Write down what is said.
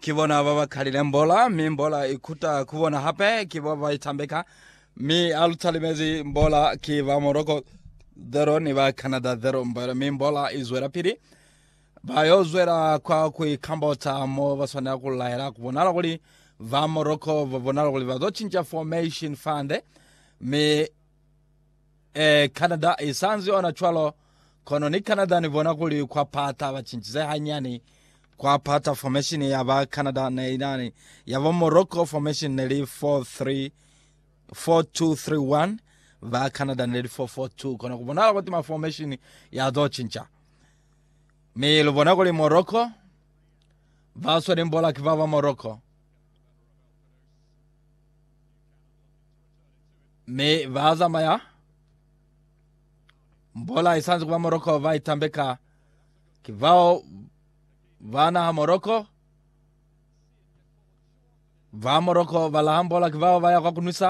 Ki bona ba ba kalile mbola, mi mbola i kuta ku bona hape. Ki bo ba itambeka, mi a lu talimezi mbola ki ba Morocco 0 ni ba Canada 0 mbola, mi mbola i zwela pili. Ba yo zwela kwa ku ikambota mo ba swanela ku laela. Ku bonala kuli ba Morocco ba bonala kuli ba zo cinca formation fande, mi Eh, Canada i sa nzi ona cwalo, kono ni Canada ni bona kuli kwa pata ba cincize hanyani. Kwa pata formation ya ba Canada ne inani ya bo Morocco formation ne li 4-3, 4-2-3-1, ba Canada ne li 4-4-2, kono ku bonahala kuti ma formation ya to cinca. Mi lu bona kuli Morocco, ba sweli mbola ki ba ba Morocco. mi ba zamaya mbola isanzi kuba moroko ba itambeka ki bao ba naha moroko ba moroko ba laha mbola ki bao ba ya kwa kunwisa